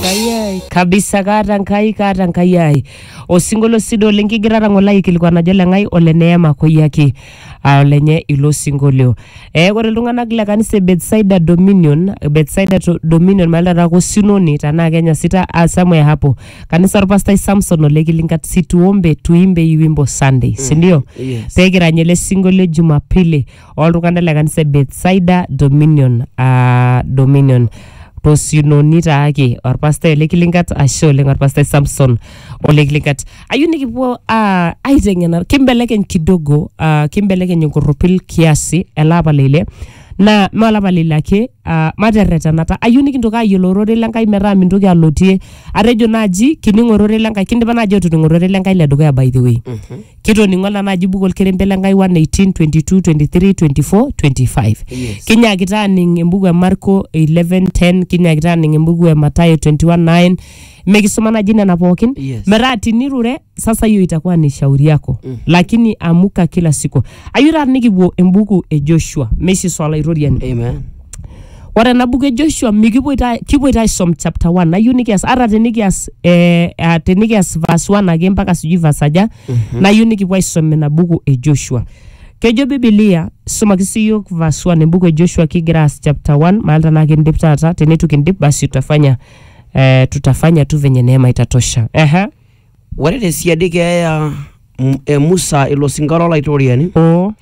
Enkai ai. kabisa kaata nkai kaata nkai ai osinkolio sido oleng kigira atang'ola aikilikuan ajo leng'ai ole neema koyiaki aa olenye ilo sinkolio eh, ore iltung'anak le kanisa e Bethsaida Dominion Bethsaida to- Dominion maali taata ake osinoni tenaa Kenya sita ah, somewhere hapo kanisa orpastai Samson ole Kilingat situombe tuimbe iwimbo Sunday sindio Yes. pekirany ele sinkolio Jumapili oltung'anak le kanisa e Bethsaida Dominion aa Dominion tosinoni taake orpastai ole Kilingat ashe oleng orpastai Samson ole Kilingat ayieu nikipuo aa aiteng'ena kimbelekeny kidogo aa kimbelekeny enkorropil kiasi ele apa le ile naa mee olapa le ile ake aa materretenata ayieu nikintoki ayiolou ororei le Nkai metaa mintoki alotie atejo naaji kining ororei le Nkai kindipa naaji atoning ororei le Nkai le dukuya by the way kitoning'o ena naji buku olkerenket le Nkai 1:18, 22, 23, 24, 25. Yes. Kinyaakita aaning embuku e Marko 11:10, kinyaakita aaning embuku e Mathayo 21:9. Mikisuma naji nena pookin. Yes. Metaa tinirure sasa hiyo itakuwa ni shauri yako. Mm. Lakini amuka kila siku. Ayieu taata nikipuo embuku e Joshua, Moses Olaitoriani. Amen. Ore ena buku e Joshua mikipoito ai- kipoito aisom chapter 1 nayieu nikias ata tenikias eh, ah, tenikias verse 1 ake mpaka sijui verse aja nayieu nikipuo aisom ina buku e Joshua. Kejo Biblia sumaki sii yiok verse 1 embuku e Joshua kigira aas chapter 1 maal tenaa kindip taata teneitu kindip basi tutafanya eh, tutafanya tu venye neema itatosha. Ehe. Ore te siadi keeya e Musa ilo sinka lo Laitoriani, oo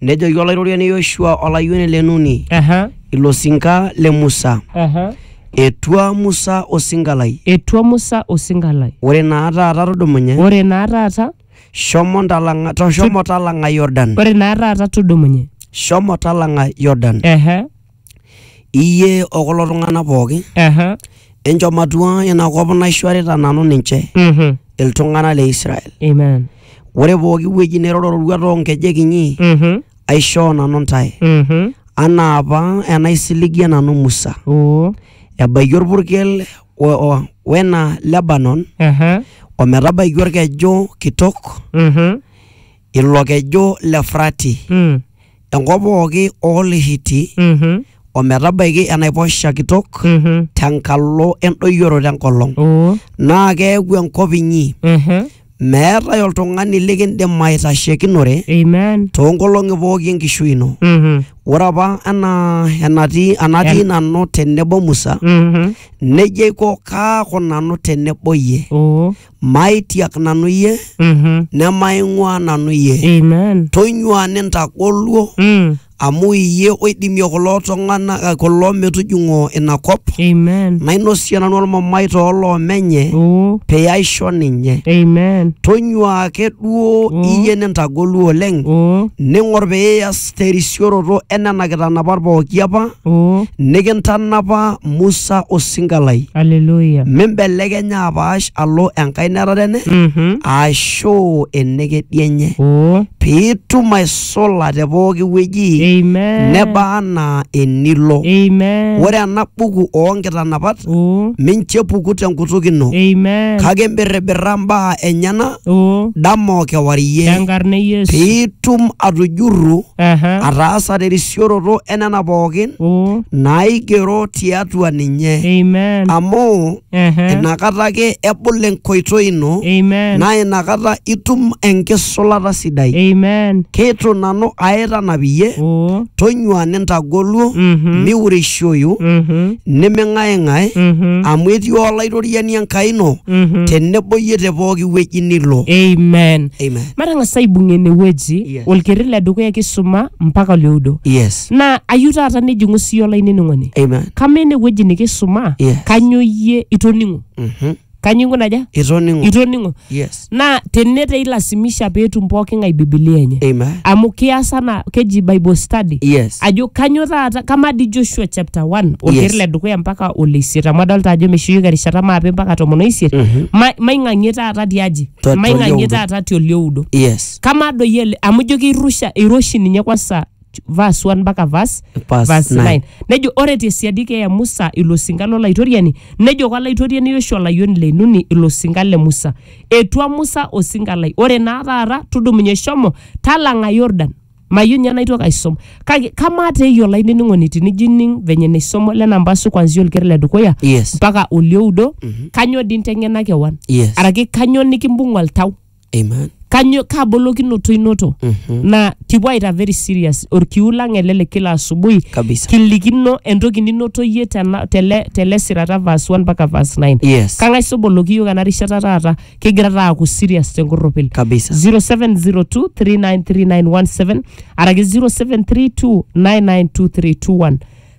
nejoki Olaitoriani Yoshua olayioni le Nuni, aha ilo sinka le Musa, aha etua Musa osinka lai. etua Musa osinka lai Ore naa taata tudumunye, ore naa taata shomo ntalang'a, to- shomo talang'a Yordan, ore naa taata tudumunye shomo talang'a Yordan. ehe Iyie o kulo tung'anak pooki, Aha. enchom atua ina kop naishorita nanu ninche, Mhm. iltung'anak le Israel. Amen. Ore pooki wueji niroro roruat oo nkejek inyi, Mhm. aishoo nanu ntae, Mhm. anaa apa enaisiligie nanu Musa. Oo. Ebaiki olpurkel o- o- wena Lebanon, Aha. o metabaiki olkeju kitok, Mhm. ilo keju le Frati, Mm. enkop pooki oo Lhiti, Mhm. o metabaiki enaiposha kitok Mhm. tenkalo endoyioroto enkolong. Oh. Naa keeku enkop inyi, Ehe. meetae oltung'ani likindim aitashekinore Amen. too nkolong'i pooki enkishui ino. Mhm. Ore apa anaa enatii enatii En- nanu tenebo Musa, Mhm. neija aiko kaaku nanu tenebo iyie. Oh. Maitiak nanu iyie, Mhm. nemaing'uaa nanu iyie. Amen. Tonyua nintagoluo, Mm. amu iyie oidimie kulo tung'anak kulo metujung'o ina kop, Amen. nainosie nanu olmamai too loomenye, Oh. pee aisho ninye. Amen. Tonyua ake duo Oh. iyie nintagoluo oleng, Oh. ning'or pee ias terisioroto e nena kitanapat pooki apa Oh, nikintanapa Musa osinka lai. hallelujah. Mimbelekenya apaash alo enkae netare enye Mhm. aashu enekedi enye Oh, piitum aisula te pooki wueji amen. neba anaa enilo. Amen. Ore ena buku oo nkitanapat Oh, mincho epuku tenkutuk ino amen. kake imbirribirra mbaa enyena Oo. dama o kewarie Tenkarna e Yesu. piitum atujurru Aha. ataasa terisioroto enena pookin Oo. naaigero tiatua ninye Amen. amu Aha. inakata ake ebul enkoitoi ino Amen. naa inakata itum enkisulata sidai Amen. keitu nanu aaitanap iyie Oo. tonyua nintagoluo Mhm. miureishoyu Mhm. niming'aing'ae Mhm. amu etii olaitoriani enkai ino Mhm. tenebo iyie te pooki wueji nilo amen Amen. matang'asa aibung'ie enewueji Yes. olkerri le dukuya kisuma mpaka olioudo yes naa ayieu taata nijing'u siyie olainining'oni Amen. kamaa enewueji nikisuma Yes. kanyoo iyie itoning'o Mhm. kanyo inguna aja itoning'o itoning'o yes naa tene te ilasimisha peetum pooki ng'ae bibilia enye amen amu kias ana keji bible study yes ajo kanyo taata kamaa dii joshua chapter 1 olkeer Yes. le dukuya mpaka ole isiet amu adolta ajo meishuyoki erishata maape mpaka tomon o isiet Mhm. Ma- maing'ang'ie taata tiaji Tua- maing'ang'ie tiolioudo. taata tiolioudo yes kamaa doi ele amu ijo keirusha eiroshi ninye kwansa vas 1 mpaka vas Verse vas nine. 9 nejo ore tesiadi keeya musa ilo sinka lolaitoriani nejo kolaitoriani yoshua olayioni le nuni ilo sinka le musa etua musa osinka lai ore naa taata tudumunye shomo talang'a yordan mayieu ninye naitoki aisom kake kamaa te iyie olainining'oni tinijo ining venye naisomo lena mpasu kwanzia olker le dukuya Yes. mpaka olioudo kanyoo dii inteng'ena kewan Yes. araki kanyoo nikimbung'a oltau Amen. kanyo kaa bolokinoto inoto Mhm. na kipuo aita very serious orkiu lang ele le kila asubuhi Kabisa. kilikino entoki ninoto yie tena- tele tele sirata verse 1 mpaka verse 9 Yes. kang'ae soboloki yiok ena rishata taata kigira taa aaku serious tenkorropil Kabisa. 0702393917 araki 0732992321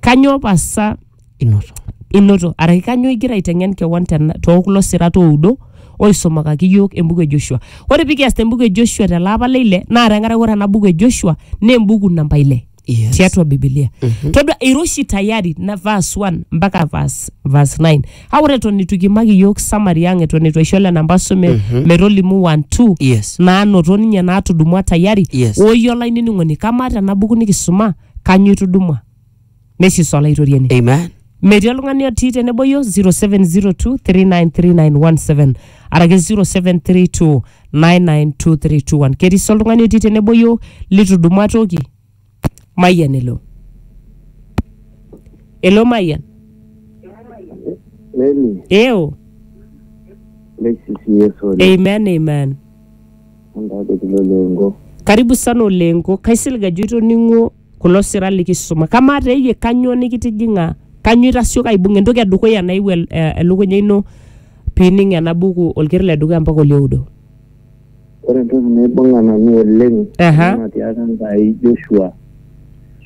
kanyoo pasa inoto. inoto araki kanyoo igira aiteng'en kewon tena- too kulo sirat oudo oisumakaki iyiook embuku e Joshua. Ore pikias te mbuku e Joshua tele apa le ile naa tenkaraki ore ena buku e Joshua naa embuku namba ile Yes. tiatua Biblia. Todua ira oshi tayari na verse 1 mpaka verse, verse 9. Kake ore eton eitu kiimaki iyiook summary ang eton eitu aisho lelo namba sume metolimu 1 2 Yes. naanoto ninye naatudumua tayari Yes. oyie olainining'oni kamaa tena buku nikisuma kanyoo itudumua nesiso olaitoriani Amen. metii oltung'ani otii tenebo yo 0702393917 arake 0732992321 ketii sii oltung'ani otii tenebo yo litudumua toki mayian elo elo mayian Leni, eo leisisi Yesu oleng. amen amen Ntadekilo lengo. karibu sana olengo kaisilig ajo itoning'o kulo sira likisuma. Kamaa te iyie kanyoo nikitijing'a? Kanyoo itasioka aibung? Entoki e dukuya naewuo el- eh, elukunya ino pining ena buku olker le dukuya mpaka olioudo. Ore entoki naibung'a nanu oleng Aha. naa natiaka Enkai Joshua